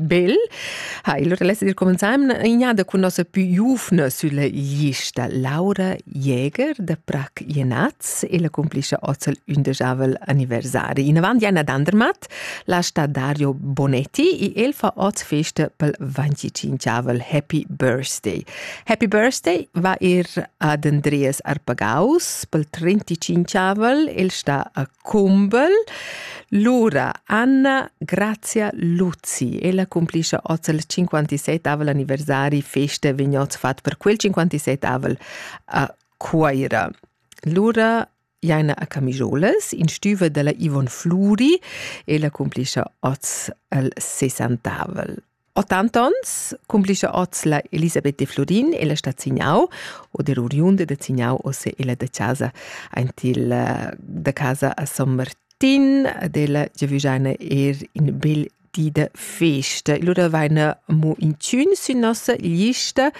Bel ha il reless dir comenzaim ignada cun nossa pü giuvna sülla lista Laura Jäger da Prac Jenaz e la cumplischa ozzel ündejavel anniversari. Inavant Jana Dandermatt, la sta Dario Bonetti e el fa oz festa pel 25avel Happy Birthday. Happy Birthday va ir ad Andreas Arpagaus pel 35avel, el sta a Cumbel. Lura Anna Grazia Luzi. Ella cumplischa oz il 57 anniversari feste vegn oz fat per quel 57 a Cuaira. Lura Jaina a Camijoles, in stüva della Ivon Fluri, ella cumplischa oz il 60 80 ons cumplischa oz la Elisabeth de Florin e la sta Zignau o der oriunda de Zignau o se ella de casa aint il eh, da casa a San Martin della Giaviggiana er in bel di de festa. E allora vaina mo in tschun sün nossa lista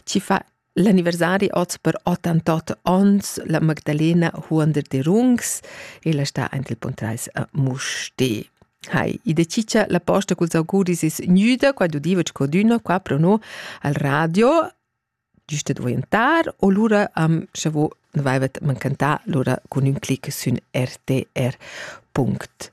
ci fa L'anniversari oz per 88 onns la Magdalena Huonder de Rungs ella sta ant il Pontreis a Musti. Hai, i decicia la posta culs auguris is gnüda qua d'udiva codüno qua pro no al radio giusta d'orientar o lura am scha vo vaivet mancantà lura cun ün clic sün rtr.it.